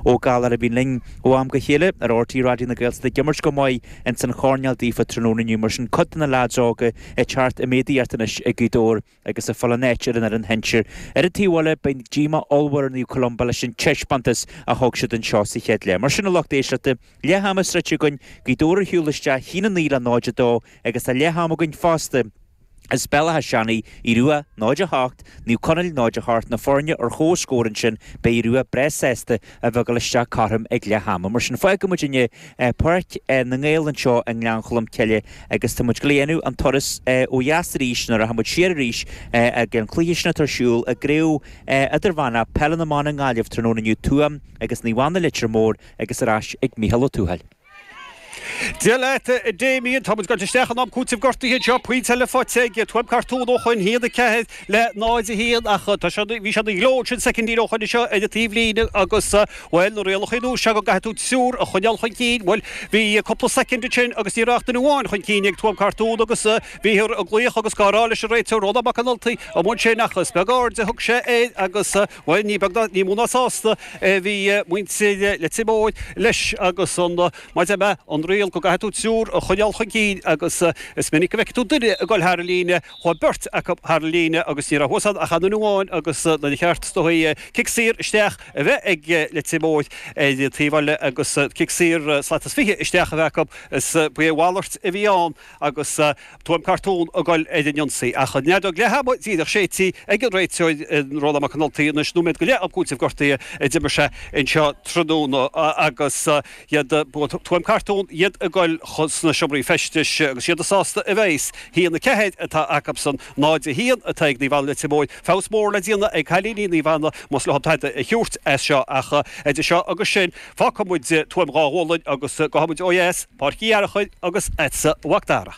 Ó Gallchóir a bhíonn linn ó am go chéile ar RTÉ Raidió na Gaeltachta ag imirt go maith ins an choirnéal daofa tráthnóna inniu mar sin cuid de na leaids óga ag teacht i méadaíocht anois i Gaoth Dobhair agus ag fáil a n-áit ar an fhoireann shinsir. Ar an taobh eile beidh díomá ollmhór ar Naomh Columba leis an taispeántas a thug siad anseo sa chéad leath. Mar sin a lucht éisteachta, leath ama sroichte againn, Gaoth Dobhair ar shiúl isteach 1-9 le 0-2 agus ag leath am againn fosta, As Béal Átha Seanaidh, Aodh Ruadh, 0, 8, Naomh Conaill, 0, 8, na foirne ar chomhscór ansin beidh Aodh Ruadh breá sásta a bheith ag dul isteach cothrom ag leath ama. Mar sin, fágfaidh muid inniu Páirc na nGael anseo i nGleann Cholm Cille agus tá muid ag dul a dhéanamh an turas ó dheas arís nuair a rachaidh muid siar arís ag an cluiche sin atá ar siúl i gCraobh Idirmheánach Peile na mBan i nGaillimh tráthnóna inniu. Tuaim agus Naomh Anna, Leitir Móir agus ar ais ag Micheál Ó Tuathail. Dia leat a Damien, táimid gaibhte isteach in am cúitimh gortaithe anseo, pointe eile faighte ag Tuaim Cartún ó shoin, 1, 4 le 0, 1, ach tá sé, bhí sé ina ghleo ansin soicindín ó shoin anseo ar an taobhlíne agus, bhuel, na rialacha nua seo go gcaithfidh tú triúr a choinneáil chun cinn, bhuel, bhí cúpla soicind ansin agus ní raibh ach duine amháin chun cinn ag Tuaim Cartún agus bhíothar ag glaoch agus gá rá leis an réiteoir Rónán Mac an Ultaigh amuigh ansin ach is beag aird a thug sé air agus Bhuel, ní mó ná sásta a bhí muintir Leitir Móir leis agus an maide mear, an riail go gcaithfidh tú triúr a choinneáil chun cinn agus is minic a fheicfidh tú duine ag dul thar an líne. Chuaigh beirt acu thar an líne agus ní raibh thuas ann ach an duine amháin agus nuair ba cheart do chic saor isteach a bheith ag Leitir Móir ar an taobh eile agus cic saor slat is fiche isteach a bheith acu, is ba é a mhalairt a bhí ann. agus Tuaim Cartún ag gol ar an ionsaí, ach an fheadóg leath ama díreach séidte ag an réiteoir, Rónán Mac an Ultaigh, anois nóiméad go leith am cúitimh gortaithe a d'imir sé anseo tráthnóna agus iad Tuaim Cartún, iad ag gol sna seomraí feistis agus iad sásta a bheith. 1, 4 atá acusan, 0, 1 atá ag Naomh Anna Leitir Móir. Feabhas mór le déanamh ag cailíní Naomh Anna más leo tada a thiúrt as seo, ach idir seo agus sin, Fágfaidh muid Tuaim Dhá Ghualainn agus gabhfaidh muid ó dheas, Páirc Uí Fhearchair agus chugatsa a Mhac Dara.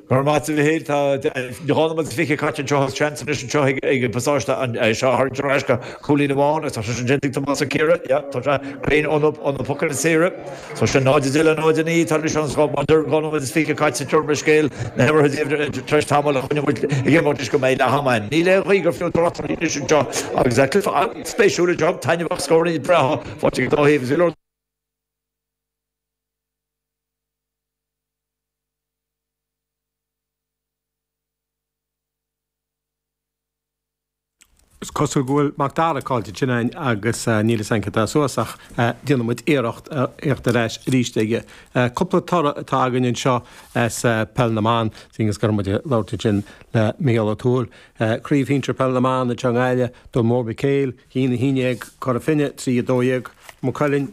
Go raibh maith agat a Mhichíl. Tá dhá nóiméad is fiche caite anseo agus seans anois anseo ag an bPasáiste é seo a tharraingt ar ais go cúilín amháin agus tá sé sin déanta ag Tomás Ó Ciardha. Yep, tá sé cruinn ó na pocanna saora. Tá sé 0, 10 le 0, 9 tar éis an scóir. Mar a deirim dhá nóiméad is fiche caite, tiubharfaimid scéal na himeartha daoibh tar éis tamaill, coinneoimid ag imeacht leis go mbeidh leath ama ann. Níl aon ghaoth gur fiú trácht uirthi anois anseo agus tá cluiche an-spéisiúil, job, taitneamhach, scórannaí breátha faighte ag an dá thaobh agus go leor Is cosúil go bhfuil Macdara caillte againn agus níl fhios againn céard atá suas ach déanfaidh muid iarracht a theacht ar ais arís aige. Cúpla toradh atá againn anseo as Peil na mBan, seeing is go raibh muid ag labhairt ansin le Micheál Ó Tuathail. Craobh Shinsear Peil na mBan anseo i nGaillimh, Dún Mór Mhic Éil, a haon a haon déag, Cora Finne, 3, 12, Maigh Cuilinn,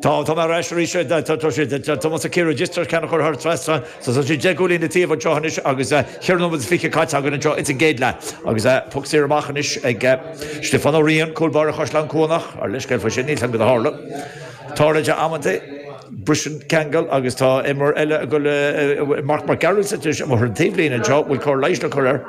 Tá mé ar ais arís. Tá mo Sakira Registrar ceanna curtha ar trasna so tá sí deich gcúilín le taobh anseo anois agus cheithre nóiméad is fiche caite againn anseo ins an gcéad leath agus poc saor amach anois ag Stiofán Ó Riain, cúl báire Chaisleán Cnucha. Ár leithscéal fá sin, níl fhios againn céard a tharla. Tarlaíonn sé amanntaí, briseann ceangal agus tá imreoir eile ag Mac Gearailt anois amuigh ar an taobhlíne anseo a bhfuil cóir leighis le cur air.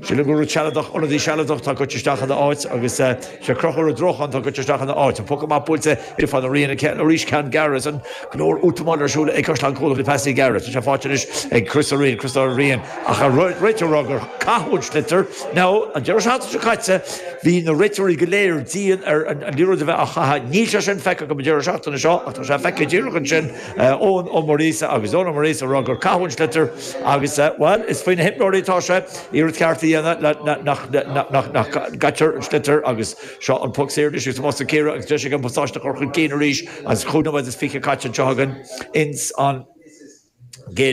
Sílim gur rud sealadach, ionadaí sealadach, atá goite isteach ina áit, agus is é Conchúr Ó Drócháin atá goite isteach ina áit. An poc amach buailte ag Stiofán Ó Riain go gearr arís, ceann gearr, agus an-leor útamáil ar siúl ag Caisleán Cnucha faoi phasaí gearra. Tá sé fáighte anois ag Crois an Riain, Crois Dhoire Riain, ach an réiteoir a rá gur caitheadh an sliotar, nó an deireadh seachtaine seo caite bhí na réiteoirí go léir dian ar an liathróid a bheith á chaitheamh. Níl sé sin feicthe agam an deireadh seachtaine seo, ach tá sé feicthe díreach ansin. Eoin Ó Muiríosa agus Eoin Ó Muiríosa a rá gur caitheadh an sliotar agus, bhuel, is faoi na himreoirí atá sé iarracht cheart a dhéanamh leis nach gcaitear an sliotar agus seo an poc saor anois agus amuigh sa Ciarraí agus deis ag an bpasáiste a chur chun cinn arís agus cúig nóiméad is fiche caite anseo againn ins an gcéad